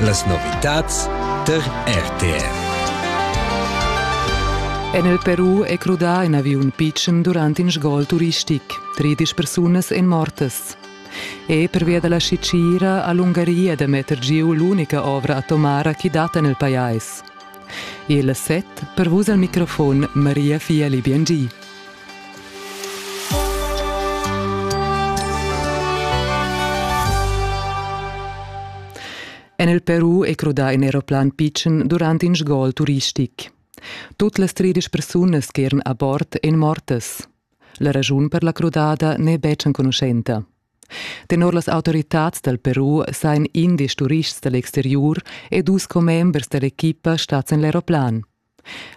Las novitads tar RTR. En il Peru è crudà in aviun pitschen durant in sgol turistic. Tredisch persunas èn mortas. E pervia da la Sicira ha l'Ungaria da metter giu l'unica ovra atomara che dat en il pajais. Il set pervus al microfon Maria Fieli Biangi. En il Peru è crudà in aeroplan pitschen durant in sgol turistic. Tut las tredisch persunas che eran a bord èn mortas. La raschun per la crudada n'è betg enconuschenta. Tenor las autoritads dal Peru sain indesch turists da l'exteriur e dus commembers da l'equipa stads en l'aeroplan.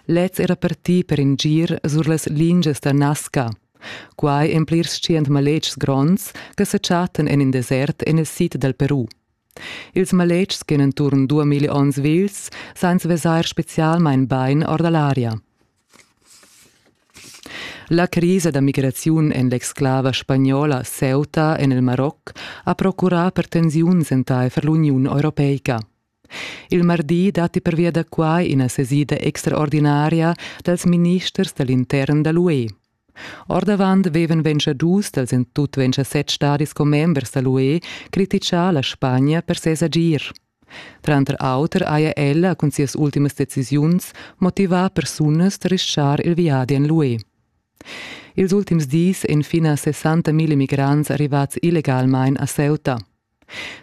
Lez era partì per in gir sur las lingias da Nazca. Quai en plirs tschient maletgs gronds che sa chattan en in desert en il sid dal Peru. Ils maletgs che enturn duamilli onns vils san vesair spezialmain bain or da l'aria. La crisa da migraziun en l'exclava spagnola Ceuta en il Maroc ha procurà per tensiuns entaifer l'Uniun europeica. Il mardi datti pervia da quai ina sesida extraordinaria dals ministers da l'intern da l'UE. Ordavant vevan venciadus dals en tut ventisett stadis commembers da l'UE criticà la Spagna per ses agir. Tranter auter haja ella cun sias ultimas decisiuns motivà persunas da rischar il viadi en l'UE. Ils ultims dis èn fin a 60.000 migrants arrivads illegalmain a Ceuta.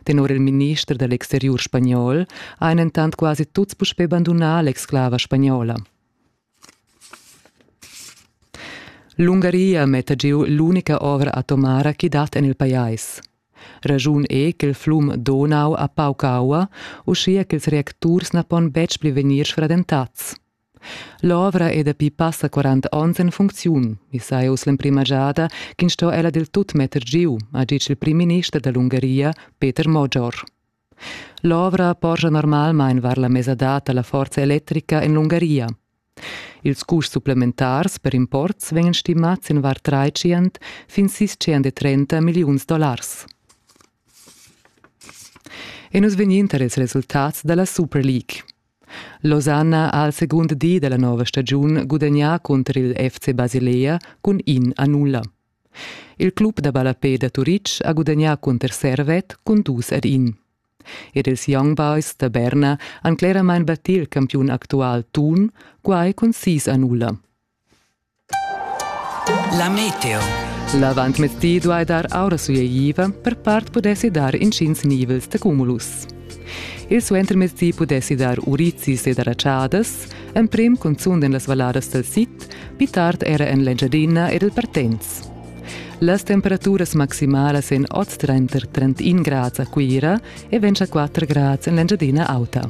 Tenor il minister da l'exteriur spagnol han entant quasi tuts puspè bandunà l'exclava spagnola. L'Ungaria metta giu l'unica ovra atomara che dat en il pajais. Ragiun è ch'il flum Donau ha pauc aua, uschia ch'ils reacturs na pon betg pli vegnir sfradentats. L'ovra è dapi passa 40 onns en funcziun. I saja uss l'emprima giada ch'in sto ella del tut metter giu, ha ditg il primminister da l'Ungaria, Peter Moggior. L'ovra porscha normalmain var la mesadad da la forza electrica en l'Ungaria. Ils custs supplementars per imports vegnan stimads in var 300 fin 630 milliuns dollars. E nus vegnin tar ils resultats da la Super League. Losanna ha al segund di dalla nova stagiun gudagnà cunter il FC Basilea cun in a nulla. Il club da ballapè da Turitg ha gudagnà cunter Servet cun dus ad in. Ed ils Young Boys da Berna han cleramain battì il campiun actual Thun, quai cun sis a nulla. La meteo. L'avantmezdi duai dar aura sueiva, per part pudessi dar intgins nivels da cumulus. Il suentermezdi pudessi dar urizis ed aratschadas, emprim cunzunt en las valladas dal sid, pli tard era en l'Engiadina ed il Partenz. Las temperaturas maximalas en oz tranter 31 grads a Cuira e 24 grads en l'Engiadina Auta.